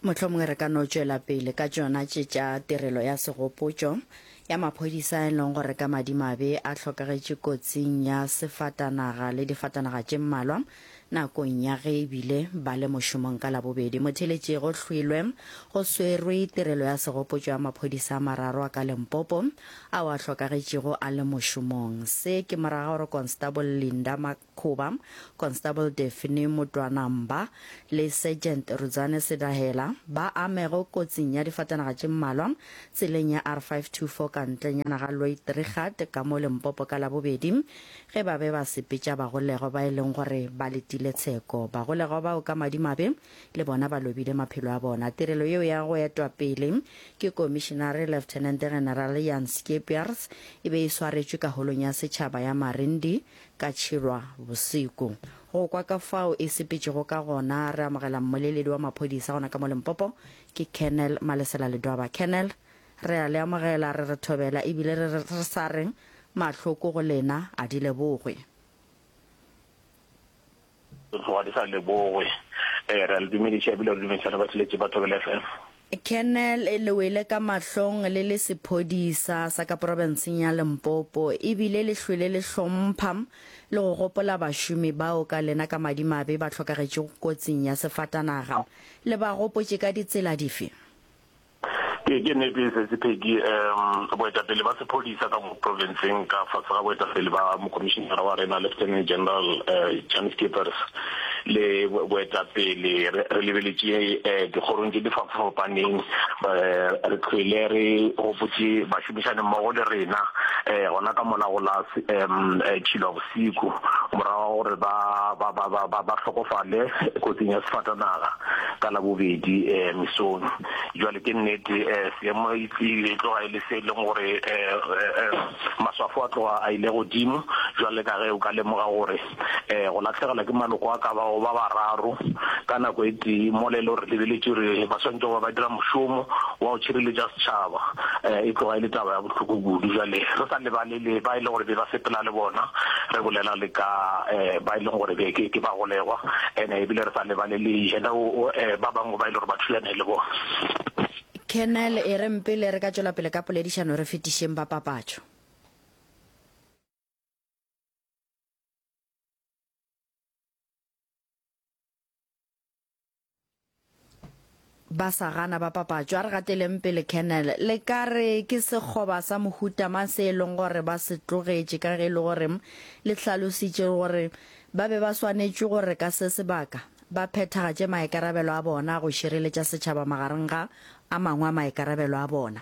Mohlomongwe re ka no tšwela pele ka tšona tše tša tirelo ya segopotšo ya maphodisa e leng gore ka madimabe a hlokagetše kotsing ya sefatanaga le difatanaga tše mmalwa nakong ya ge e bile ba le mošomong ka labobedi motheletše go hlwilwe go swerwe tirelo ya segopotšo ya maphodisa a mararo a ka lempopo ao a hlokagetšego a le mošomong se ke moraga gore constable linda Khuba, Constable Daphne Motwanamba le Sergeant Rudzane Sedahela ba amego kotsing ya difatanaga tše mmalwa tseleng ya R524 ka ntlenyana ga Loitrigat ka mo Limpopo ka Labobedi ge ba be ba sepetša bagolegwa ba e leng gore ba letile tsheko. Bagolegwa bao ka madimabe le bona ba lobile maphelo a bona. Tirelo yeo ya go etwa pele ke Komišenare Lieutenant General Jan Skeepers e be e swaretšwe Kaholong ya Setšhaba ya Marindi ka tšhelwa bosiku. Go kwa ka fao e sepetšego ka gona, re amogela mmoleledi wa maphodisa gona ka mo Limpopo, ke Colonel Malesela Ledwaba. Colonel, re a le amogela, re re thobela e bile re re sa reng mahloko go lena a di lebogwe. Go tloga di sa lebogwe. Ee, re a le dumediša ebile re dumediša le batheletši ba Thobela FM. Colonel, le wele ka mahlong le le sephodisa sa ka profenseng ya Limpopo ebile le hlwele le hlompha le go gopola bašomi bao ka lena ka madimabe ba hlokagetšego kotsing ya sefatanaga. Le ba gopotše ka ditsela dife? Ke, ke nete e setse, Peggy. Um, boetapele ba sephodisa ka mo provinceng ka fase ga boetapele ba mokomišinara wa rena, Lieutenant General uh, Jan Skeepers, le boetapele re, re lebeletše uh, dikgorong tše di fafafapaneng, uh, re tlhwele re gopotše bašomišani mmogo le rena uh, gona ka mola go la um, uh, Tšhilwa Bosiku, morago ga gore ba, ba, ba, ba, ba, ba hlokofale kotsing ya sefatanaga ka Labobedi uh, mesong. Jwale ke nnete eh, seemo e tlile e tloga e le se e leng gore eh, eh, eh, maswafo a tloga a ile godimo jwale ka ge o ka lemoga gore eh, go latlhegelwa ke maloko a ka bago ba bararo ka nako e tee mo le le gore lebeletše re ba swantse goba ba dira mošomo wa go tšhireletša setšhaba eh, e tloga e le taba ya bohloko kudu jwale re sa lebale le ba e lego gore be ba sepela le bona, re bolela le ka ba e leng gore be ke ke bagolegwa ene ebile re sa lebalele you know ba bangwe ba e le gore ba thulane le bona. Colonel, E reng pele re ka tšwela pele ka poledišano re fetišeng ba papatšo. ba sa gana ba papatšo a re gateleng pele kennel le ka re ke sekgoba sa mohutama se e leng gore ba se tlogetše ka ge e le gore le hlalositše gore ba be ba swanetše gore ka se sebaka ba phethagatše maikarabelo a bona go šireletša setšhaba magareng ga a mangwe a maikarabelo a bona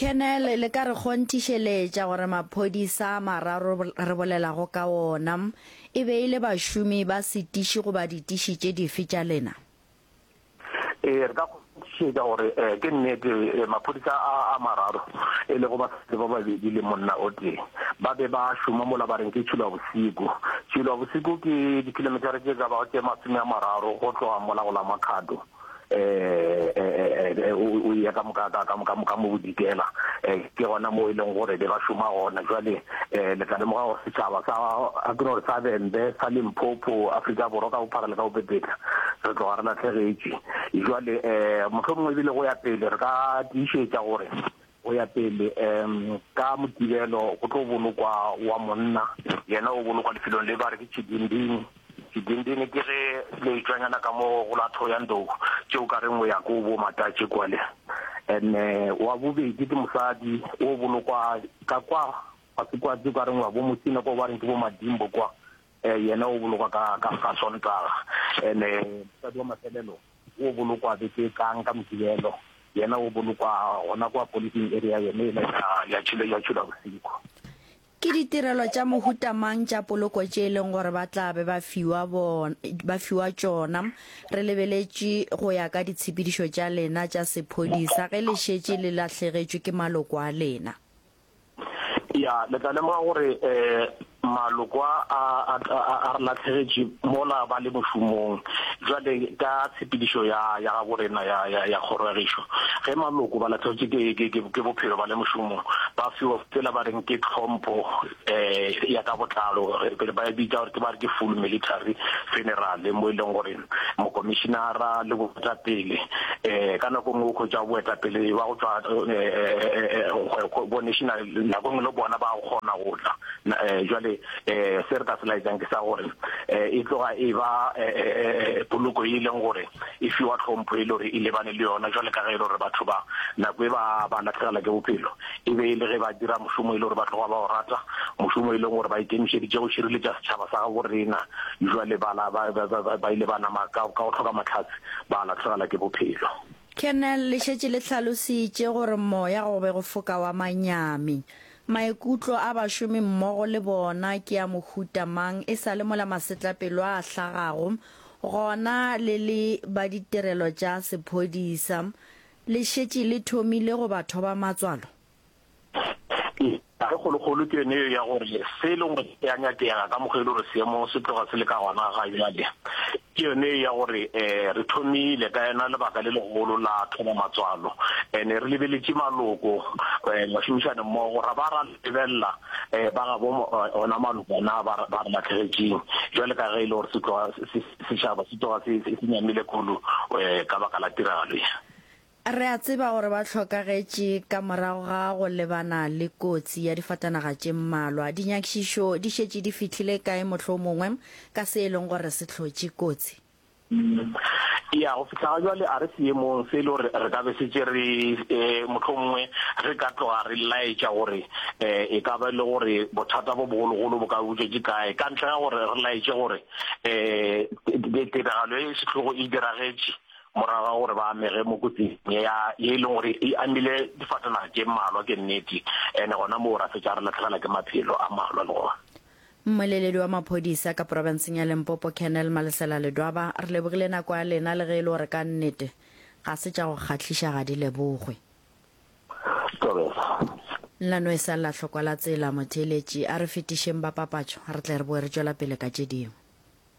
Colonel, le ka re kgonthišeletša gore maphodisa a mararo re bolelago ka wona e be e le bašomi ba setiši goba ditiši tše dife tša lena? Ee, re ka kgonthišetša gore um ke nnete maphodisa a a mararo e lego basadi ba babedi le monna o tee ba be ba šoma mola ba reng ke Tšhilwabosiku. Tšhilwabosiku ke dikhilometara tše ka bago tše masome a mararo go tloga mola go la Makhado. o ya ka moka ka moka moka mo bodikela ke gona mo e leng gore be ba šoma gona jwale le tla lemoga gore setšhaba sa a ke gore sa bembe sa limpopo afrika borwa ka bophara le ka bopepetla re tloga re latlhegetše jwale mohlomongwe ebile go ya pele re ka tiišetša gore Go ya pele, um ka Mokibelo go tlo bolokwa wa monna, yena o bolokwa lefelong le ba re ke Tšidindini. Tšidindini ke ge leetšwanyana ka mo go la Thohoyandou, tše o ka reng o ya ko bo Matatše kwale. And wa bobedi ke mosadi o bolokwa ka kwa kwatsi-kwatsi, o ka reng wa bo Mosina kwa ba reng ke bo Madimbo kwa, Yena o bolokwa ka, ka, ka Sontaga. And-e mosadi wa mafelelo o bolokwa beke e tlang ka Modirelo. Yena o bolokwa gona kwa policing area yone yela ya, ya Tšhule, ya Tšhula Bosikhu. Ke ditirelo tša mohuta mang tša poloko tše e leng gore ba tla be ba fiwa, bon, ba fiwa tšona? Re lebeletše go ya ka ditshepedišo tša lena tša sephodisa ge le šetše le lahlegetšwe ke maloko a lena. Ya, le tla lemoga gore um maloko a a a re latlhegetše mola ba le mošomong jwale ka tshepedišo ya ya ga borena ya ya ya kgoro ya gešo ge maloko ba latlhegetše ke ke ke ke bophelo ba le mošomong ba fiwa tsela ba reng ke tlhompho um ya ka botlalo ba e bitsa gore ke ba re ke full military funeral mo e leng gore mokomišinara le boetapele um ka nako nngwe o khwetša boetapele ba go tšwa um bo national nako nngwe le bona ba kgona go tla um jwale um se re ka se laetsang ke sa gore um e tloga e ba um poloko e leng gore e fiwa tlhompho e le gore e lebane le yona jwale ka ge e le gore batho ba nako e ba ba latlhegela ke bophelo e be e le ge ba dira mošomo e le gore ba tloga ba o rata, mošomo e leng gore ba ikemišeditše go šireletša setšhaba sa gabo rena, bjale ba la ba, ba, ba, ba ile ba nama ka, ka go hloka mahlatse ba lahlegelwa ke bophelo. Kernel le šetše le hlalositše gore moya go be go foka wa manyami. Maikutlo a bašomi mmogo le bona ke a mohuta mang e sa le mola masetlapelo a hlagago gona le le ba ditirelo tša sephodisa Le šetše le thomile go ba thoba matswalo? Ee, taba e kgolokgolo ke yone yeo ya gore se e lego gore se a nyakega ka mokgwa e le gore seemo se tloga se le ka gona ga bjale ke yone yeo ya gore um re thomile ka yona lebaka le legolo la thoba matswalo and-e re lebeletše maloko um mašomišanemmogo ra ba ra lebelela um ba gabo ona maloko na ba re latlhegetseng jwale ka ge e le gore se tloga setšhaba se tloga se nyamile kulu um ka baka la tiragalo e re a tseba gore ba hlokagetše ka morago ga go lebana le kotsi ya difatanaga tše mmalwa dinyakišišo di šetše di fihlile kae mohlomongwe ka se e leng gore se hlotše kotsi Eya, go fihla ga bjale a re seemong se e le gore re ka be šetše re, mohlomongwe re ka tloga re laetša gore e ka ba e le gore bothata bjo bogologolo bo ka butšwa ke kae, ka ntle ga gore re laetše gore tiragalo ye sehlogo e diragetše morago ga gore ba amege mo kotsing ye ya, ye e leng gore e amile difatanaga tše mmalwa ke nnete, and gona moo ra fetša re lahlehela ke maphelo a mmalwa le gona. Mmoleledi wa maphodisa ka porofenseng ya Limpopo Colonel Malesela Ledwaba re lebogile nako ya lena le ge e le gore ka nnete ga se tša go kgahliša ga di lebogwe. Nna no e sa lla hlokwa la tsela, motheeletši a re fetišeng ba papatšo re tle re boe re tšwela pele ka tše dingwe.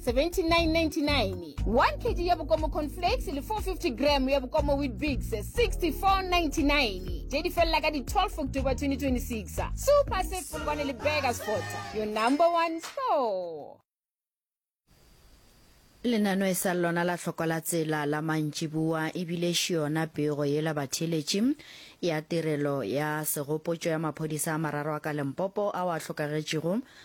7999 1 kg ya bokomo conflakes le 450 gram ya bokomo witbix 6499 tše di felela ka di-12 october 2026 super set polokwane le burger sports your number one store lenano e sa lona la hloko la tsela la mantšiboa e bile xiona pego yela batheeletši ya tirelo ya segopotšo ya maphodisa a mararo a ka lempopo ao a hlokagetšego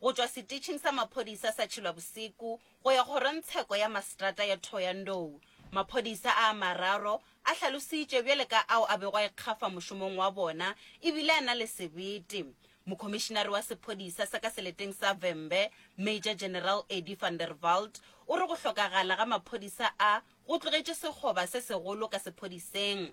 go tšwa setitšhing sa maphodisa sa Tšhilwabosiku go ya kgorongtsheko ya masetrata ya Thohoyandou. Maphodisa a a mararo a hlalositšwe bjale ka ao a bego a ikgafa mošomong wa bona e bile a na le sebete. Mokhomišinare wa sephodisa sa ka seleteng sa Vhembe, Major General Eddie van der Walt, o re go hlokagala ga maphodisa a go tlogetše sekgoba se segolo ka sephodiseng.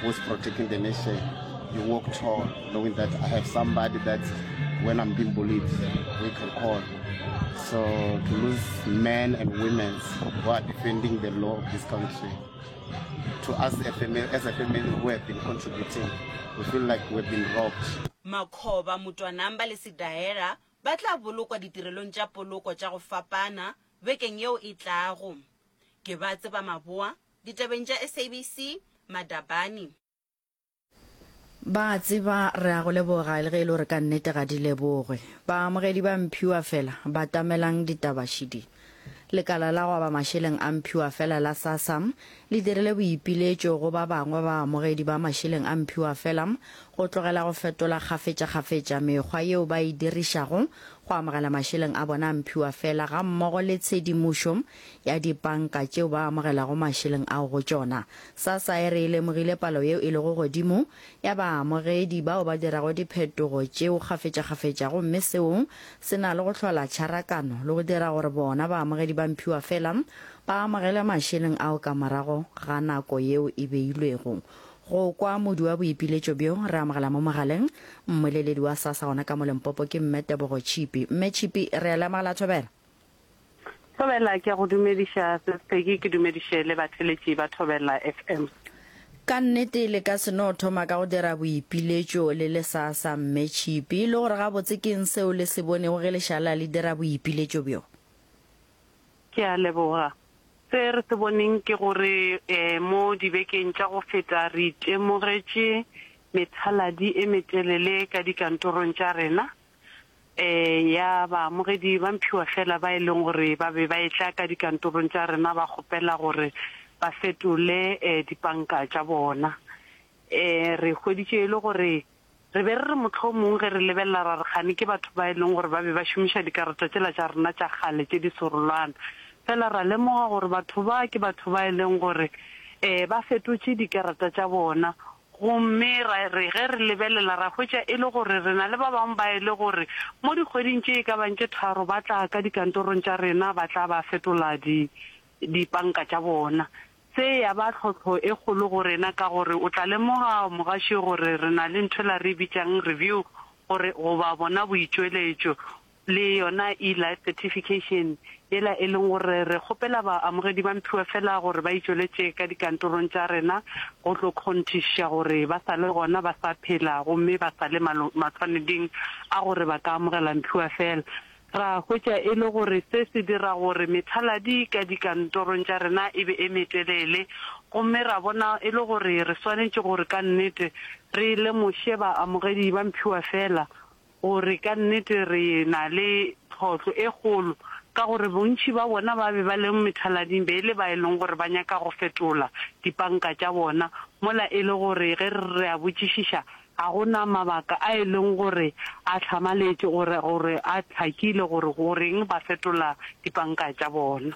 who's protecting the nation you walk tall knowing that i have somebody that when i'm being bullied we can call so to lose men and women who are defending the law of this country to us a family, as a family who have been contributing we feel like we've been robbed makgoba motwanamba le sedaela ba tla bolokwa ditirelong tša poloko tša go fapana bekeng yeo e tlago Ke ba tseba maboa, ditabeng tša SABC, Madabani. Ba a tseba, re a go leboga, le ge e le gore ka nnete ga di lebogwe. Baamogedi ba Mphiwa fela, batamelang ditaba šidi. Lekala la go aba mašeleng a Mphiwa fela la SASSA le dirile boipiletšo go ba bangwe ba baamogedi ba mašeleng a Mphiwa fela go tlogela go fetola kgafetšakgafetša mekgwa yeo ba e dirišago go amogela mašeleng a bona a Mphiwa fela gammogo le tshedimošo ya dipanka tšeo ba amogelago mašeleng ao go tšona. Sassa e re e lemogile palo yeo e lego godimo ya baamogedi bao ba dirago diphetogo tšeo kgafetšakgafetša gomme seo se na le go hlola tšharakano le go dira gore bona baamogedi ba mphiwa fela ba amogele mašeleng ao ka morago ga nako yeo e beilwego go kwa modu wa boipiletšo bjo re amogela mo mogaleng mmoleledi wa sassa gona ka mo lempopo ke mme tebogo tšhipi mme tšhipi re a le amogela thobela Thobela ke a go dumediša Sis Peggy ke dumediše le batheletši ba Thobela FM. Ka nnete le ka se no thoma ka go dira boipiletšo le le sa sa Mme Tšhipi, le gore gabotse ke eng seo le se bonego ge le šala le dira boipiletšo bjo? Ke a leboga. Se re se boneng ke gore um mo dibekeng tša go feta re itemogetše methaladi e metelele ka dikantorong tša rena, ya baamogedi ba mphiwa feela ba e leng gore ba be ba etla ka dikantorong tša rena ba kgopela gore ba fetole dipanka tša bona. Re hweditše e le gore re be re re mohlomong ge re lebelela ra re kgane ke batho ba e leng gore ba be ba šomiša dikarata tšela tša rena tša kgale tše di serolwana, feela ra lemoga gore batho ba ke batho ba e leng gore ba fetotše dikarata tša bona Gomme ra re ge re lebelela, ra hwetša e le gore re na le ba bangwe ba e le gore mo dikgweding tše e ka bang tše tharo ba tla ka dikantorong tša rena, ba tla ba fetola di, dipanka tša bona. Se ya ba tlhohlo e kgolo go rena, ka gore o tla lemoga, mogašo, gore re na le ntho ela re e bitšang review, gore, goba bona boitšweletšo, le yona eLife Certification, yela e leng gore re kgopela baamogedi ba mphiwa fela gore ba itšweletše ka dikantorong tša rena go tlo kgonthišiša gore ba sa le gona, ba sa phela gomme ba sa le mathwaneding a gore ba ka amogela mphiwa fela. Ra hwetša e le gore se se dira gore methaladi ka dikantorong tša rena e be e metelele gomme ra bona e le gore re swanetše gore ka nnete re lemoše baamogedi ba mphiwa fela Gore ka nnete re na le tlhohlo e kgolo ka gore bontši ba bona ba be ba leng methalading be e le ba e leng gore ba nyaka go fetola dipanka tša bona mola e le gore ge re a botšišiša ga go na mabaka a e leng gore a hlamaletše gore gore a hlakile gore goreng ba fetola dipanka tša bona.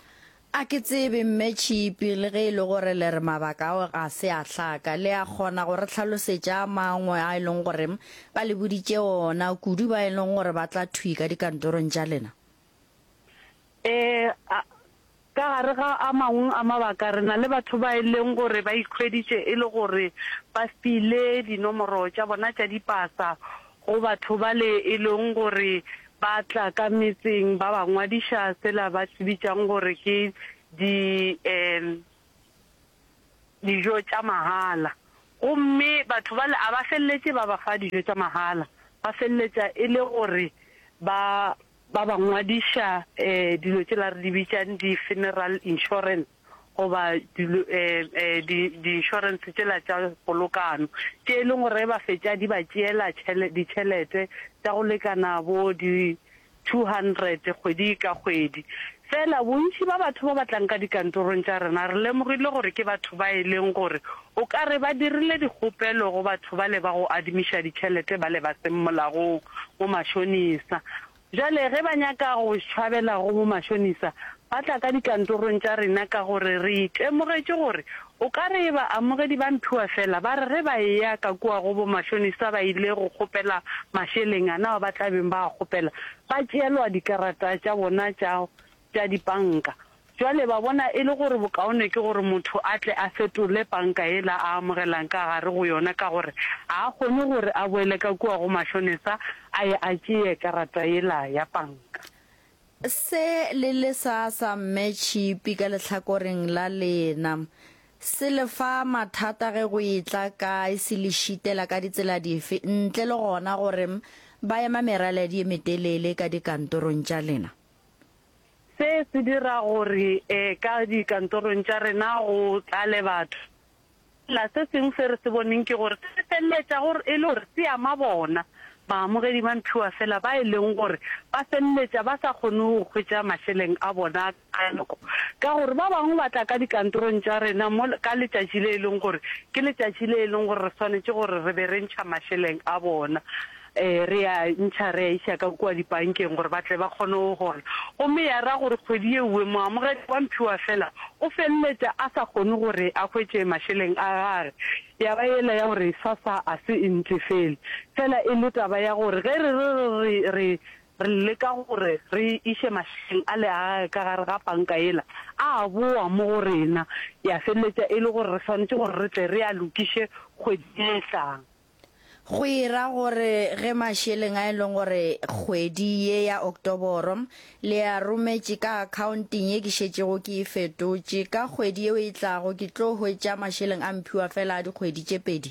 A ke tsebe, Mme Tšhipi, le ge e le gore le re mabaka ao ga se a hlaka, le a kgona go re hlalosetša a mangwe a e leng gore ba le boditše ona, kudu ba e leng gore ba tla thwi ka dikantorong tša lena? Ee, a, ka gare ga a mangwe a mabaka, re na le batho ba e leng gore ba ikhweditše e le gore ba file dinomoro tša bona tša dipasa Go batho bale e leng gore ba tla ka metseng ba ba ngwadiša sela ba se bitšang gore ke di um dijo tša mahala. Gomme batho bale a ba feleletše ba ba fa dijo tša mahala, ba feleletša e le gore ba ba ba ngwadiša um dilo tšela re di bitšang di-funeral insurance. goba dilo di di insurance tšela tša polokano tše e leng gore ba fetša di ba tšeela ditšhelete tša go lekana bo di two hundred kgwedi ka kgwedi. Fela bontši ba batho ba ba tlang ka dikantorong tša rena re lemogile gore ke batho ba e leng gore o ka re ba dirile dikgopelo go batho bale ba go adimiša ditšhelete bale ba seng molagong bo mashonisa. Bjale ge ba nyaka go tšhwabela go bomašonisa, ba tla ka dikantorong tša rena ka gore re itemogetše gore o ka re baamogedi ba mphiwa feela ba re ge ba eya ka kua go bomašonisa ba ile go kgopela mašeleng a nao ba tla beng ba a kgopela, ba tšeelwa dikarata tša bona tša tša dipanka. Bjale ba bona e le gore bokaone ke gore motho a tle a fetole panka yela a amogelang ka gare go yona ka gore ga a kgone gore a boele ka kua go mašonesa a ye a tšee karata yela ya panka. Se le le sa sa Mme Tšhipi ka lehlakoreng la lena se le fa mathata ge go e tla kae se le šitela ka ditsela dife ntle le gona gore ba ema meraledi e metelele ka dikantorong tša lena? Se se dira gore ka dikantorong tša rena go tlale batho. Fela se sengwe se re se boneng ke gore se feleletša e le gore se ama bona baamogedi ba mphiwa fela ba e leng gore ba feleletša ba sa kgone go hwetša mašeleng a bona ka nako ka gore ba bangwe ba tla ka dikantorong tša rena ka letšatši le e leng gore ke letšatši le e leng gore re swanetše gore re be re ntšha mašeleng a bona. Ee, re a ntšha re a iša ka kua dipankeng gore ba tle ba kgone go gola. Gomme ya ra gore kgwedi ye nngwe moamogedi wa mphiwa feela o feleletša a sa kgone gore a hwetše mašeleng a gage. Ya ba yela ya gore sasa a se e ntefele. Feela e le taba ya gore ge re re re re re re leka gore re iše mašeleng ale a gage ka gare ga panka yela, a a bowa mo go rena. Ya feleletša e le gore re swanetše gore re tle re a lokiše kgwedi ye e tlang. Go e ra gore ge mašeleng a e leng gore kgwedi ye ya Oktoboro le a rometše ka akhaonteng ye ke šetšego ke e fetotše, ka kgwedi yeo e tlago ke tlo hwetša mašeleng a mphiwa feela a dikgwedi tše pedi?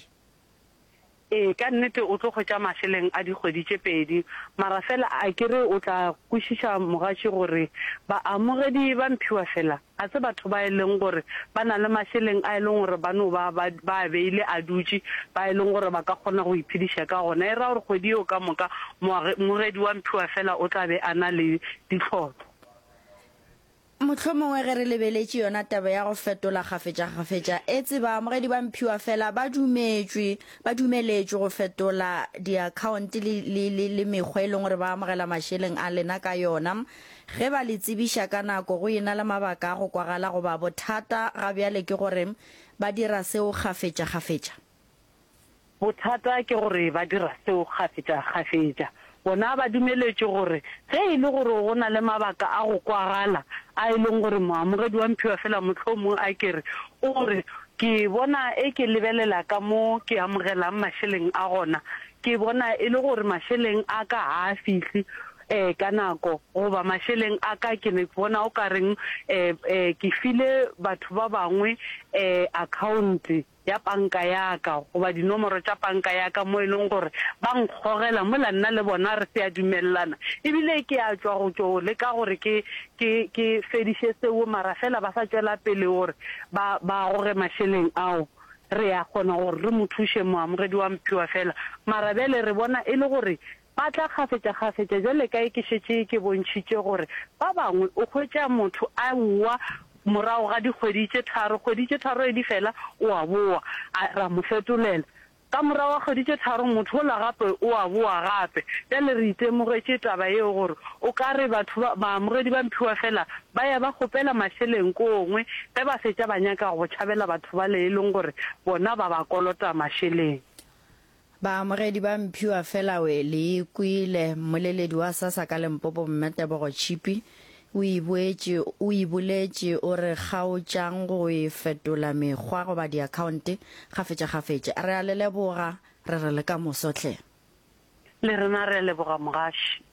Ee, ka nnete o tlo hwetša mašeleng a dikgwedi tše pedi. Mara feela a ke re o tla kwešiša mogatši gore baamogedi ba mphiwa feela Ga se batho ba e leng gore ba na le mašeleng a e leng gore ba no ba ba ba a beile a dutše, ba e leng gore ba ka kgona go iphediša ka gona. E ra gore kgwedi yeo ka moka moage, mogedi wa mphiwa feela o tla be a na le ditlhotlo. Mohlomongwe ge re lebeletše yona taba ya go fetola kgafetšakgafetša, etse baamogedi ba mphiwa feela ba dumetšwe, ba dumeletšwe go fetola diakhaonte le, le, le, le mekgwa e leng gore ba amogela mašeleng a lena ka yona. Ge ba le tsebiša ka nako go e na le mabaka a go kwagala goba bothata ga bjale ke gore ba dira seo kgafetšakgafetša? Bothata ke gore ba dira seo kgafetšakgafetša. Bona ba dumeletše gore ge e le gore go na le mabaka a go kwagala a e leng gore moamogedi wa mphiwa feela mohlomong a ke re o re, Ke bona e ke lebelela ka mo ke amogelang mašeleng a gona ke bona e le gore mašeleng a ka ga a fihle ee, ka nako, goba mašeleng a ka, ke ne bona o ka reng ee, ee, ke file batho ba bangwe ee, akhaonte ya panka ya ka goba dinomoro tša panka ya ka mo e leng gore ba nkgogela mola nna le bona re se a dumelelana e bile ke a tšwa go tšo leka gore ke, ke, ke fediše seo mara fela ba sa tšwela pele gore ba, ba goge mašeleng ao. Re a kgona gore re mo thuše moamogedi wa Mphiwa fela mara bjale re bona e le gore Ba tla kgafetšakgafetša, bjale ka ye ke šetše ke bontšhitše gore ba bangwe o hwetša motho a wa morago ga dikgwedi tše tharo, kgwedi tše tharo ge di fela o a bowa, a ra mo fetolela. Ka morago ga kgwedi tše tharo motho ola gape o a bowa gape. Bjale re itemogetše taba yeo gore o ka re batho ba, baamogedi ba mphiwa fela ba ya ba kgopela mašeleng ko gongwe ge ba fetša ba nyaka go tšhabela batho bale e leng gore bona ba ba kolota mašeleng. Baamogedi ba Mphiwa Felawe le e kwele, mmoleledi wa SASSA ka Limpopo Mme Tebogo Tshipi o e boetše o e boletše o re kgaotšang go e fetola mekgwa goba diakhaonte kgafetšakgafetša. Re a le leboga, re re le ka moso hle. Le rena re a leboga mogaši.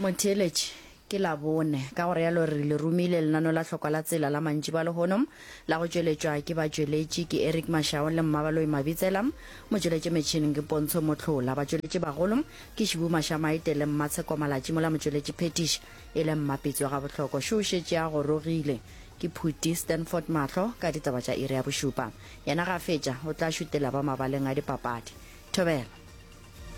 Motheeletši, Ke Labone, ka go realo re le romile lenano la hlokwa la tsela la mantšiboa a lehono, la go tšweletšwa ke batšweletši, ke Eric Mashau le Mmabaloi Mabitsela, motšweletši metšhineng ke Pontsho Motlhola, batšweletši bagolo ke Shibu Mashamaite le Mmatsheko Malatši mola motšweletši phethiši e le Mmapitsi wa Gabohloko. Šo o šetše a gorogile. Ke Phuti Stanford Mahlo ka ditaba tša iri ya bošupa. Yena ge a fetša, o tla šutela ba mabaleng a dipapadi. Thobela.